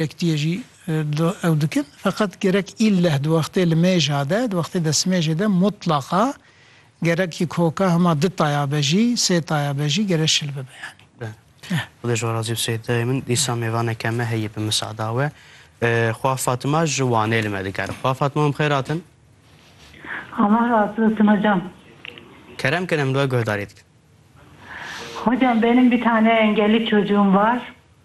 Yekitiyê jî ew dikin. Feqet gerek îlleh di wextê limêja de, di wextê destmêjê de mutlaqa gerek jî koka hema di taya be jî, sê taya be jî gere şil bibe yanî. Be. Xuda ji we razî be Seyîd dayê min. Dîsa mêvaneke me heye bi misada we. Xwa Fatima ji Wanê li me dikare. Xwa Fatima min bi xêr hatin. Allah razî be Sima can. Kerem kin em li we guhdarî dikin. Hocam benim bir tane engelli çocuğum var.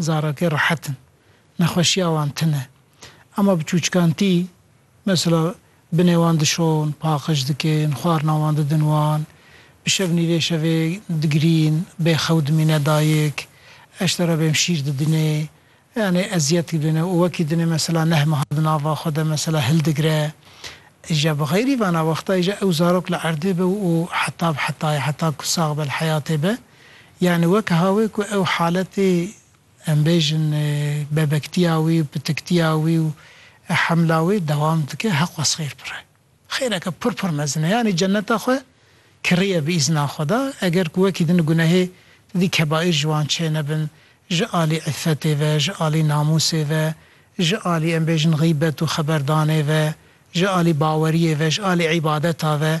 Zarokê rehet in. Nexweşiya wan tune. Ema bi çûçkantî, mesela binê wan dişon, paqij dikin, xwarina wan didin wan, bi şev nîvê şevê digirîn, bê xew dimîne dayik, eştera bêm şîr didinê, yanî eziyet didinê û wekî dinê mesela neh meha di nava xwe de mesela hildigire. Îja bi xeyrî vana wexta îja ew zarok li erdê be û heta bi heta ye, heta ku sax be li heyatê be, Yanî wek ha wê ku ew haletê em bêjin bebektiya wî, pitiktiya wî û hemla wî dewam dike heq wes xêr pir e. Xêreke pir pir mezin e. Yanî cenneta xwe kiriye bi îzna Xweda. Eger ku wekî din gunehê di dî kebaîr ji wan çênebin, ji alî îffetê ve, ji alî namûsê ve, ji alî em bêjin xîbet û xeberdanê ve, ji alî baweriyê ve, ji alî îbadeta ve,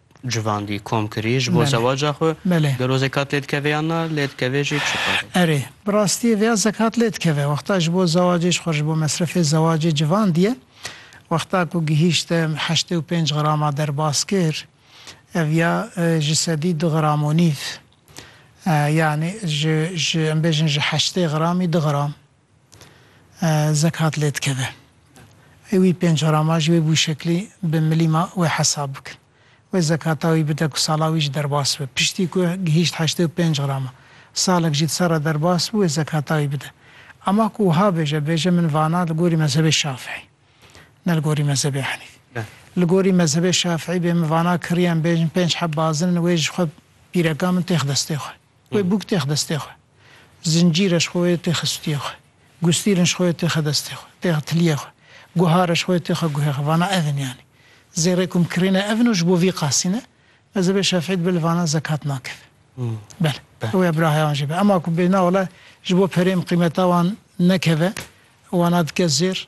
Civandî, komkirî ji bo zewaca xwe gero zekat lê dikeve yan na, lê dikeve jî çi qadê? Erê, bi rastiyê vêya zekat lê dikeve. Wexta ji bo zewacê ji xwe ji bo mesrefê zewacê civandiyê wexta ku gihîşte heştê û pênc grama derbas kir, ev ya ji sedî du gram û nîv, yanî ji ji em bêjin ji heştê gramî du gram. zekat lê dikeve. Ê wî pênc cara ma ji wê wişeklî bi milîma wê hesab bikin. Wê zekata wî bide ku sala wî jî derbas bibe. Piştî ku gihîşt heştê û pênc grama, salek jî di ser re derbas bû, wê zekata wî bide. Ema ku wiha bêje, bêje min vana li gorî mezhebê Şafîî, ne li gorî mezhebê Henîfî. Li gorî mezhebê Şafîî bê min vana kirîyem bêjin pênc heb bazin in, wê ji xwe pîreka min têx destê xwe. Wê bûk têx destê xwe. Zincîre ji xwe wê têxe stûyê xwe. Gustîrin ji xwe wê têxe destê xwe, têxe tiliyê xwe. Guhare ji xwe wê têxe guhê xwe. Vana ev in yanî. Zêrê ku em kirîne ev in û ji bo vî qasî ne. Mezhebê Şafîî dibe li vana zekat nakeve. Bele. Ew ya bira heya wan jê be. Ema ku bê na wele ji bo perê em qîmeta wan nekeve, wana dike zêr.